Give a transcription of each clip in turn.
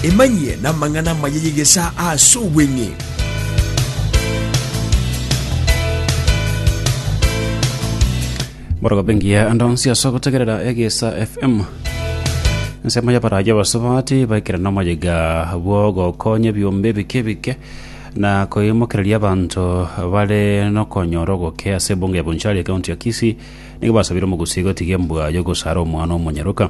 Emanyie namang'ana amaya y'egesaa ase obweng'e. Borogoba engiya ande onsi ase ogotegerera egesa FM. Ensemo y'abarayi abasubati baikire nomoyiga bw'ogokonya ebiombe ebike ebike na koimokereria abanto bare nokonyora ogoke ase ebunga ya Bonchari ekaunti ya Kisii nigo basabire omogusi gotiga embwa y'ogosara omwana omonyaroka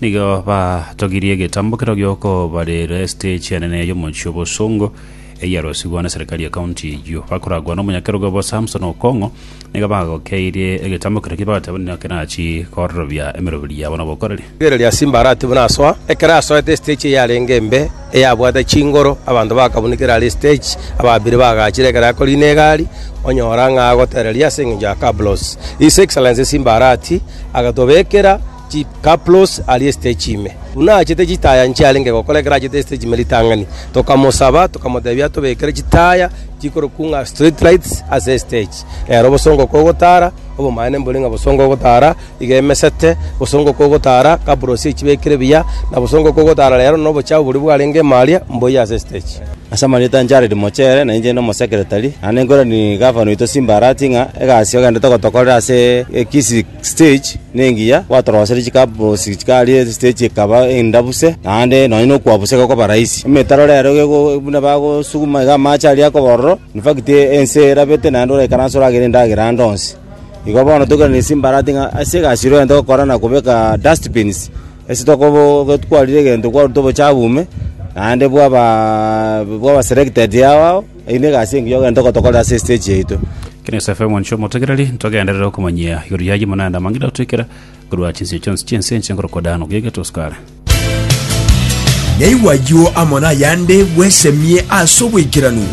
Nigo batogirie egetambokero giokobarera estage enene y'omochie obosongo eyarosigwa na serikali ya county eyio. Bakoragwa n'omonyakerogo obo Samson Okong'o nigo bagokeirie egetambokero ki bagateba nigo kerachi kororobia emeroberi yabo nobokoreri. Rigere ria Simba aratibu nasoa. Ekero asoete estage eyarenge embe eyabwate chingoro abanto bakabunekera are estage ababire bagachire ekero akorina egari onyora ng'a agotereria ase eng'encho ya cabros. His Excellency Simba Arati agatobekera Chikaplos aria esitechi ime, buna aachete chitaya inche arenge gokora ekero aachete esitechi ime ritang'ani. Tokamosaba, tokamotebia atobekere chitaya chikorokwa ng'a street lights ase esitechi. Rero obosongo kogotara, obomanene mbore ng'a bosongo ogotara iga emesete, bosongo kogotara kapros echibekire buya, na bosongo kogotara rero na obochafu boria bwarenge ime aria mboyie ase esitechi. Ase amarieta a Jared Mochere na inche n'omosekretari, naende nkoranie gavana oito Simba Arati ng'a egasi ogendete gotokorera ase Kisii, Stage nengiya gwatorosire chikabosi chikaria stage ekaba enda buse naende nonya nokwa buse gekoba rahisi. Emetaro rero gego buna bagosuguma iga amache aria akoba ororo in fact ense erabete naende oraikaranse oragere endagera ande onsi. Igo bono toikeranie ase embarati ng'a ase egasi ere ogento gokora na kobeka dust bins ase tokobo gete kwarire egento kwaruta obochabu ime naende bwaba bwaba selected yao. Eyio negasi engiya ogento gotokorera ase esiteji yaito. Ekero Yosefu omonche omotegereri ntogenderere okomanyia igoro y'ayio mono aende amang'ina otwekera korwa chinsio chionsi chi'ense enche nkorokwa Dan obuya egeto Sukara. Naigwe ayio amo nayande bwesemie ase oboikeranu.